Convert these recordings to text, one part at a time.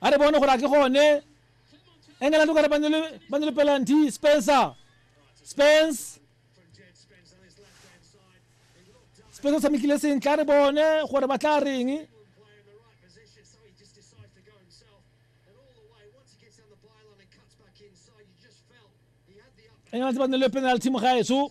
a re bone gore a ke gone england o kare ba ne le pelanty spencer spence spence o tshamekile sentle a re bone gore ba tla reng england ba ne le penalty mo gaetso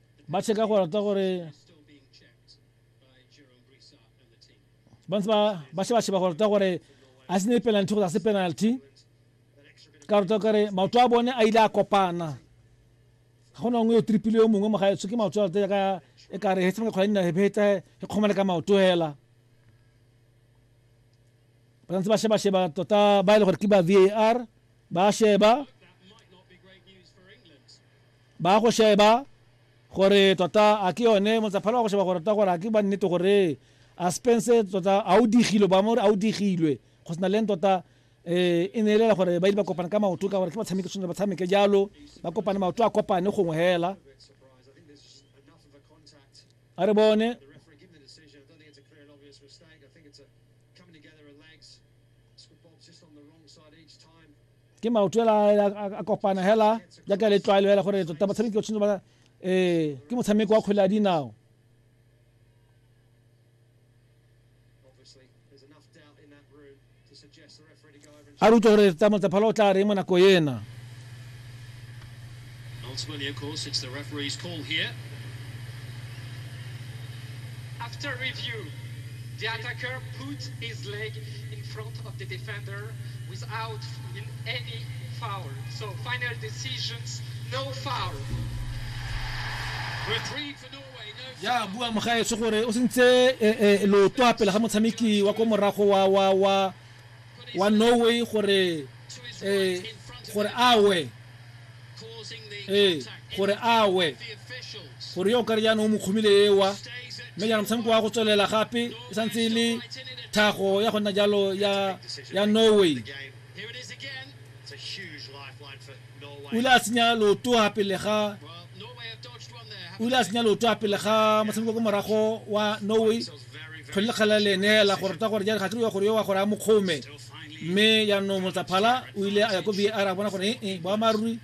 ba cheka go rata gore ba ntse ba sheba-sheba go rata gore a se ne penalty go se penalty ka rata kare maoto a bone a ile a kopana ga gona nngwe yo tripile yo mongwe moga tshwe ke maoto a rata ka e ka re hetshameka kgwala nna hepeta e kgomane ka maoto hela ba ntse ba sheba-sheba tota ba e le gore ke ba var ba sheba Ba ya go sheba gore tota a ke yone motsaphalo wa go sheba gore tota gore a ke ba nnete gore a Spence tota a o digilwe ba mo re a o digilwe go sena leng tota eh e ne e lela gore ba ile ba kopana ka maoto ka gore ke batshameki tshwanetse ba tshameke jalo ba kopane maoto a kopane gongwe hela a re bone ke maoto ela a kopana hela jaaka le tlwaelo hela gore tota batshameki o tshwanetse ba eh ke motshameko wa kgwele ya dinao a re utlwe gore tsa motsaphala o tla reng mo nako ena Ultimately, of course, it's the referee's call here. After review, the attacker put his leg in front of the defender without any foul. So final decisions, no foul. ya bua mogaetso gore o sentse eh, eh, loto a pele ga motshameki wa ko morago wa wa wa wa norway gore eh, gore awe ee eh, gore awe gore yo o kare jaanong o mo kgomile ewa mme jaanong motshameko wa go tswelela gape e santse e le tlhago ya go nna jalo ya norway o ile a senya loto ga pele ga o ile a senya loto ga pele ga motshameko ko morago wa norway kgwele lekgala le neela gore ta gore jare ga ke re gore yo wa gore a mokgome mme yaanong motsaphala o ile a ya ko var a bona gore ee boamaruri